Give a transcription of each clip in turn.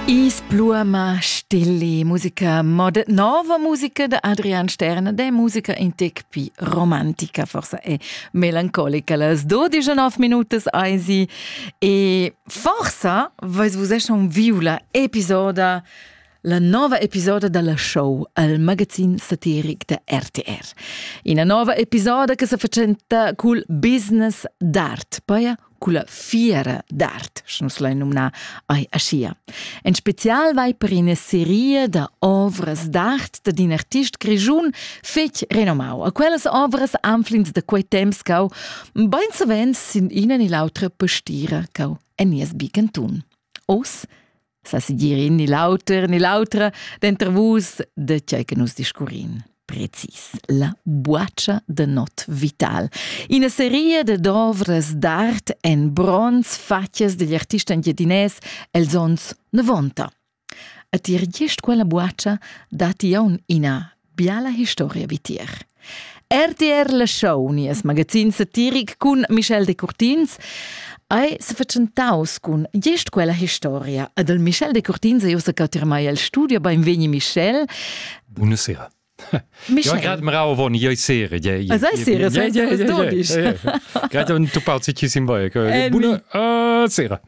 Is pluama stille musica mod nova musica de Adrian Sterne de musica in tec pi romantica forsa e melancolica las 12 minutas eisi e forsa vais vus eschon viu la episoda la nova episoda dalla show al magazin satiric da RTR. Ina nova episoda che se facenta cul business d'art, poi culla fiera d'art, sche nus lain numnar ai aschia. En special vai per ina seria da ovras d'art da d'in artist grischun fetg renomau. A quellas ovras anflins da quei temps cau bein savens sin ina ni l'autra pastira cau en nies bicantun. Os sa si dir in ni l'auter ni l'autra denter vus de tgei che nus discurrin precis la buaccia de not vital ina seria de dovras d'art en bronz fatgas degli artista engiadinès els ons 90 a tier gest quella buaccia datti aun ina Biala historia vitier. RTR la show, nies magazin satiric cun Michel Decurtins, ei sefatschentaus cun gest quella historia. Ad el Michel Decurtins e ussa cattir mai el studio, beinvegni Michel. Buonasera. Michel. Ja, grad mrau von jei sere ja sei sere ja ja grad un tu pauzi ci sim vai buna sera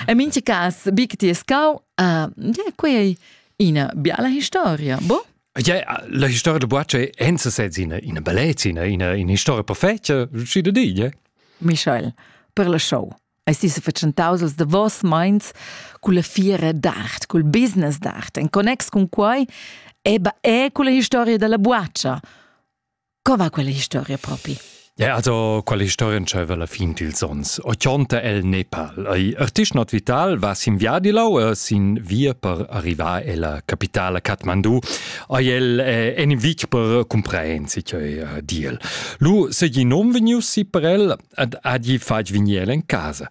e min ci cas big ti scau ja quei Ina biala historia, bo? Ja, la historia de Boace enza sez ina ina bellezina, ina ina historia perfetta, schi da dir, ja. Michael, per la show. Eis ti se fatschentaus als davos meins cun la fiera d'art, cul business d'art, en connex cun quai, eba e cun la historia dalla Boacia. Co va quella historia propi? Ja, also quale historia c'aveva la fin dils ons? O chonta el Nepal. Ei artist not vital va sin via di lau e sin via per arrivar ella capitala Kathmandu. Ei el eh, en in vic per comprehensi che eh, diel. Lu segi non vegniu si per el ad adi fatg vignel en casa.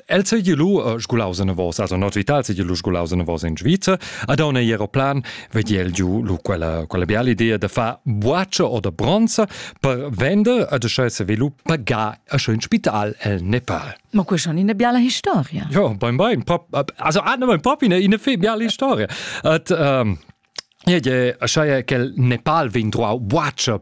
El se gelu sgulaus en vos, also nordvital se gelu sgulaus en vos in Sviza, ad on ei aeroplan, vediel giu lu quella quella biala idea de fa boace o da bronza per vender ad sche se velu pagar a schön spital el Nepal. Ma quella schon eine biala historia. Ja, beim bein, also ah, nein, proprio eine, eine biala historia. At ähm, Ja, ja, schaie che il Nepal vin troau boace